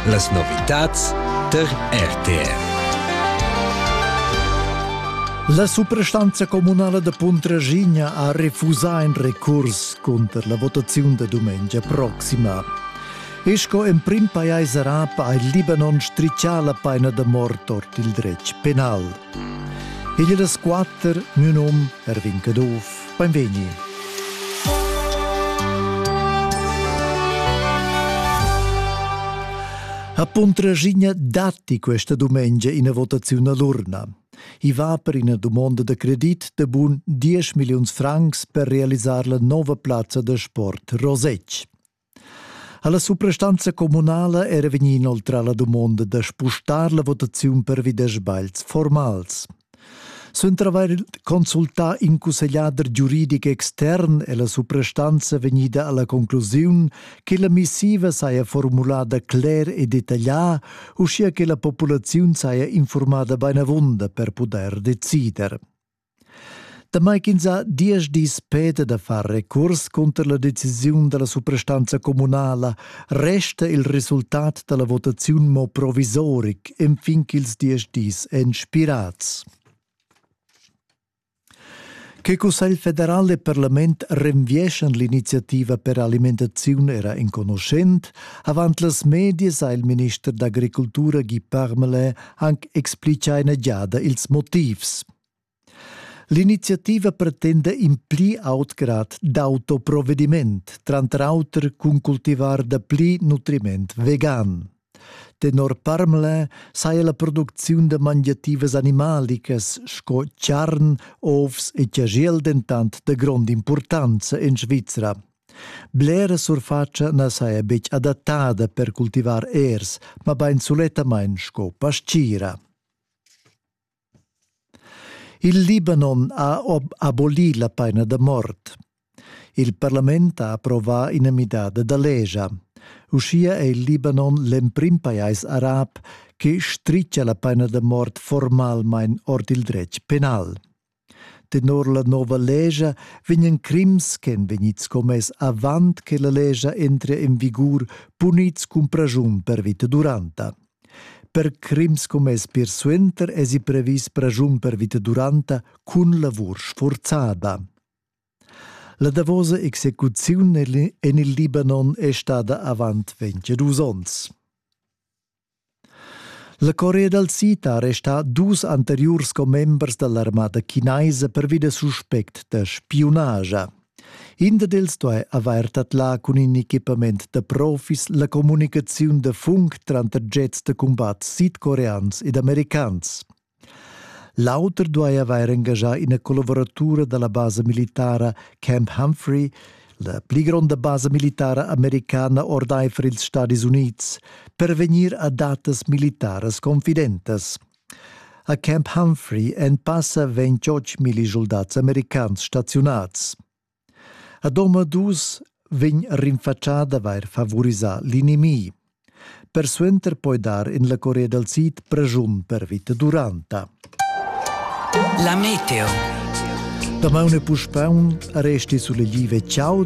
Las novitads tar RTR. La suprastanza communala da Puntraschigna ha refusà in recurs cunter la votaziun da dumengia proxima. E sco emprim pajais arab ha il Libanon striccià la paina da mort ord il dretg penal. Igl das quatter, mio num Erwin Caduff. Beinvegni. A Puntraschigna datti questa domenica ina votaziun all'urna. I va per ina domanda da credit de bun 10 milliuns francs per realisar la nova plazza da sport Rosec. Ha la suprastanza communala era vegnì inoltrà la dumonda da spustar la votaziun pervi da sbagls formals. Suenter avair consultà in cussegliader giuridic extern è la suprastanza vegnida alla conclusiun che la missiva saja formulada cler e detaglià, uschia che la populaziun saja informada bainavunda per pudair decider. Damai ch'ins ha diesch dis peda da far recurs cunter la decisiun da la suprastanza communala, resta il resultat da la votaziun mo provisoric enfin ch'ils diesch dis èn spirads. Che Cussegl federal e Parlament renvieschan l'iniziativa per alimentaziun era enconuschent. Avant las medias ha il minister d'agricultura Guy Parmelin anc explicà ina giada ils motivs. L'iniziativa pretenda in pli aut grad d'autoprovvediment, tranter auter cun cultivar da pli nutriment vegan. Tenor Parmle saja la producziun da mangiativas animalicas sco charn, ovs e chagiel dentant da grond'impurtanza en Svizra. Blera surfatscha na saja betg adattada per cultivar ers, mabain sulettamain sco pastgira. Il Libanon ha abolì la paina da mort. Il parlament ha approvà ina midada da legia. Uschia è il Libanon l'emprim pajais arab che stritga la paina da mort formalmain ord il dretg penal. Tenor la nova legia vegnan crims ch'èn vegnids commess avant che la legia entria en vigur punids cun praschun per vita duranta. Per crims commess pir suenter èsi previs praschun per vita duranta cun lavur sfurzada. La davosa execuziun en il Libanon è stada avant 22 onns. La Corea dal Sid ha arrestà dus anteriurs commembers da l'armada chinaisa pervi da suspect da spiunagia. In dad els duai avair tadlà cun in equipament da profis la communicaziun da funk tranter jets da cumbat sidcoreans ed americans. L'auter duai avair engaschà ina collavuratura da la basa militara Camp Humphrey, la pli gronda basa militara americana ordaifer ils Stadis Unids, per vegnir a datas militaras confidentas. A Camp Humphrey en passa vegn tschotg milli soldats americans staziunats. A Domadus vegn rinfatschà d'avair favorisà l'inimi. Persuenter poi dar en la Corea dal Sid pregiun per vita duranta. La meteo. Damaun e puspè resti sulle live ciao